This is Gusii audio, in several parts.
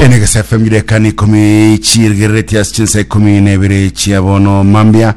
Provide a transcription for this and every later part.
enegesa fm gidekani ikumi chiirigerereti ase chinsa ikumi na ibere chia bono mambia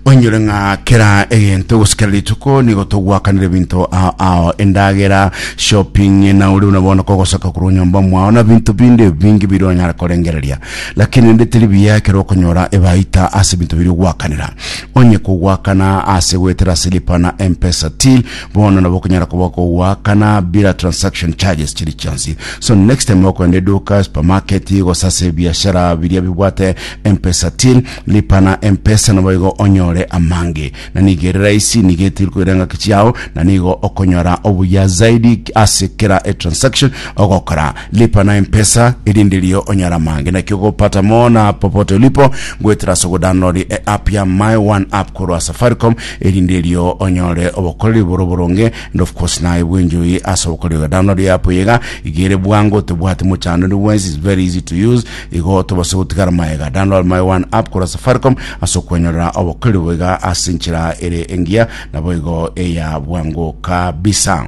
oinyore ng'a kera egento gosikera rituko nigo togwakanire ebinto ao ao endagera shopping na ori buna bono kogosoka korwa nyomba mwao na binto binde bingi biri onyara korengereria lakini ndi teri biya ekero okonyora ebaita ase ebinto biri ogwakanera onye kogwakana ase goetera silipa na mpesa till Bono nabo okonyara koba okogoakana bira transaction charges chiri chionsi. So next time okoenda eduka, supermarket, gose ase ebiashara biria bibwate M-Pesa till, lipa na M-Pesa naboigo onyore amange. Na nigo ere rahisi, nigo etiri koira engaki chiao, na nigo okonyora obuya zaidi ase kera etransaction ogokora. Lipa na M-Pesa erinde ririo onyore amange. Naki ogopata mono na popote ulipo, goetera ase ogodownload eapp ya My One App korwa Safaricom, erinde erio onyore obokoreri bore oboronge, and of course naye bw'enchori ase obokoreri oyo. Download ya app eye iga, iga ere bwango, tebwati mochandori bwensi, it's very easy to use, igo tobase gotigara maega. Download my one app korwa Safaricom ase okwenyorera obokoreri obo iga ase enchera ere engiya, naboigo eya bwango kabisa.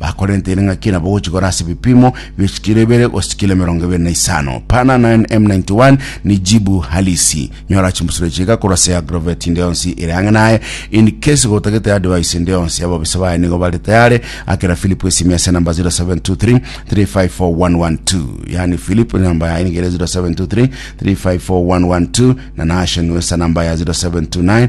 Bakorenteire ng'aki nabo gochigora ase ebipimo bie chikiro ibere gose chikiro emerongo ebere na isano. Pana 9 M91 ni jibu halisi. Nyora chimbusuro echi iga korwa ase eAgrovet inde yonsi ere ang'e naye. In case gotagete advice inde yonsi, ababisa baye nigo bare tayare. Akera Philip esimi ase number 0723 354112. Yaani Philip number yaye nigo ere 0723 354112 na Naasha Nwesa number yaye 0729